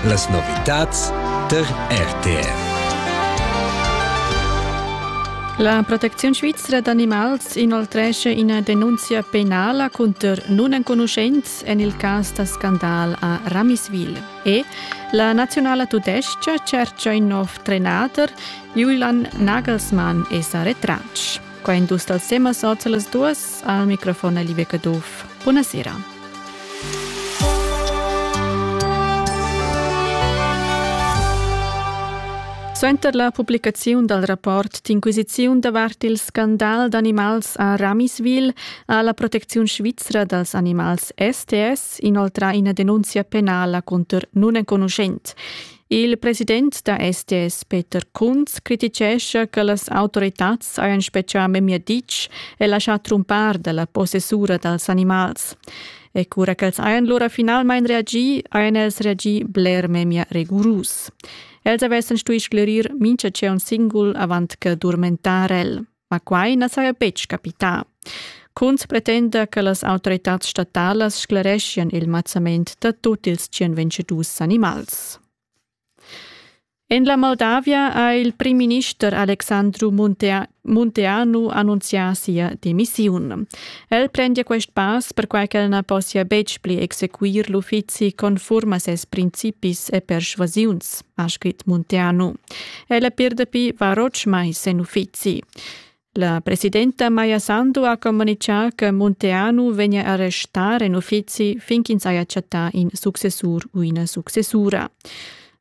Las novitads tar RTR. La protecziun svizra d'animals inoltresce ina denunzia penala cunter nunenconuschents en il cas da scandal a Ramiswil. E la naziunala tudestga tschercha in nov trenader, Julian Nagelsmann è sa retratg. Qua in dus dals temas oz las duas. Al microfon Live Caduff. Buonasera. Suenter la publicaziun dal rapport d'inquisiziun davart il scandal d'animals a Ramiswil ha la protecziun svizra dals animals STS inoltrà ina denunzia penala cunter nunenconuschent. Il president da SDS, Peter Kunz, criticescha che las autoritads hajan spetgà memia ditg e laschà trumpar dalla possessura dals animals. E cura ch'els hajan lura finalmain reagì, hajan els reagì bler memia rigurus. Els avessan stuì sclerir mintga tscheu singul avant che durmentar el. Ma quai na saja betg capità. Kunz pretenda che las autoritads statalas sclereschian il mazzament da tut ils tschien vencedus animals. En la Moldavia ha il primminister Alexandru Muntea Munteanu annunzià sia demissiun. El prendia quest pass perquai ch'el na possia betg pli exequir l'uffizi conform a ses principis e persuasiuns, ha scrit Munteanu. Ella pir dapi var otg mais en uffizi. La presidenta Maja Sandu ha comunicà che Monteanu vegnia a restar en uffizi fin ch'ins haja chattà in successur u ina successura.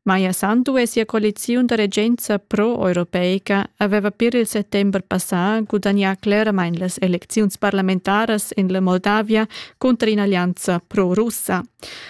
Maja Sandu e sia coaliziun da regenza pro-europeica aveva pir il settember passà gudagnà cleramain las elecziuns parlamentaras en la Moldavia cunter in'allianza pro-russa.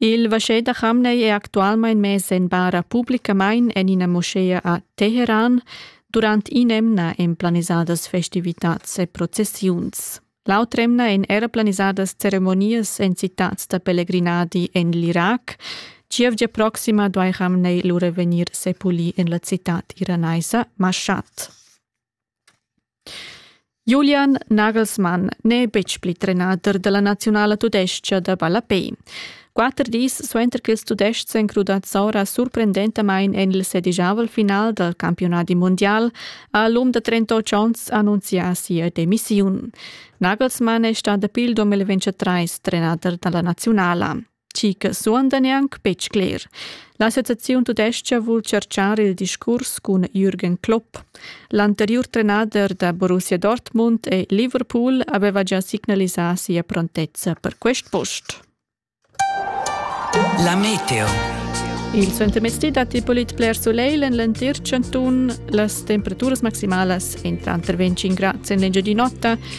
Il vaschè da chamnei è actualmein mess en bara publicamain en ina moschea a Teheran durant in'emna en planisadas festivitats e processiuns. L'autr'emna èn era planisadas ceremonias en citads da pelegrinadi en l'Irac. Gievgia proxima duai Hamnei lura vegnir sepulì en la citad iranaisa Mashat. Julian Nagelsmann n'è betg pli trenader da la naziunala tudestga da ballapè. Quatter dis suenter ch'ils Tudestgs èn crudads ora surprendentamain en il sedigiavel final dal campiunadi mundial, ha l'um da 38 onns annunzià sia demissiun. Nagelsmann è stà dapi il 2023 trenader da la naziunala. chi che suonda neanc betg cler. L'associaziun tudestga vul tschartschar il discurs cun Jürgen Klopp. L'anteriur trenader da Borussia Dortmund e Liverpool aveva già signalisà sia prontezza per quest post. La meteo. Il suentermezdi datti polit bler soleil en l'entir chantun. Las temperaturas maximalas èn tranter 25 grads en l'engiadin'otta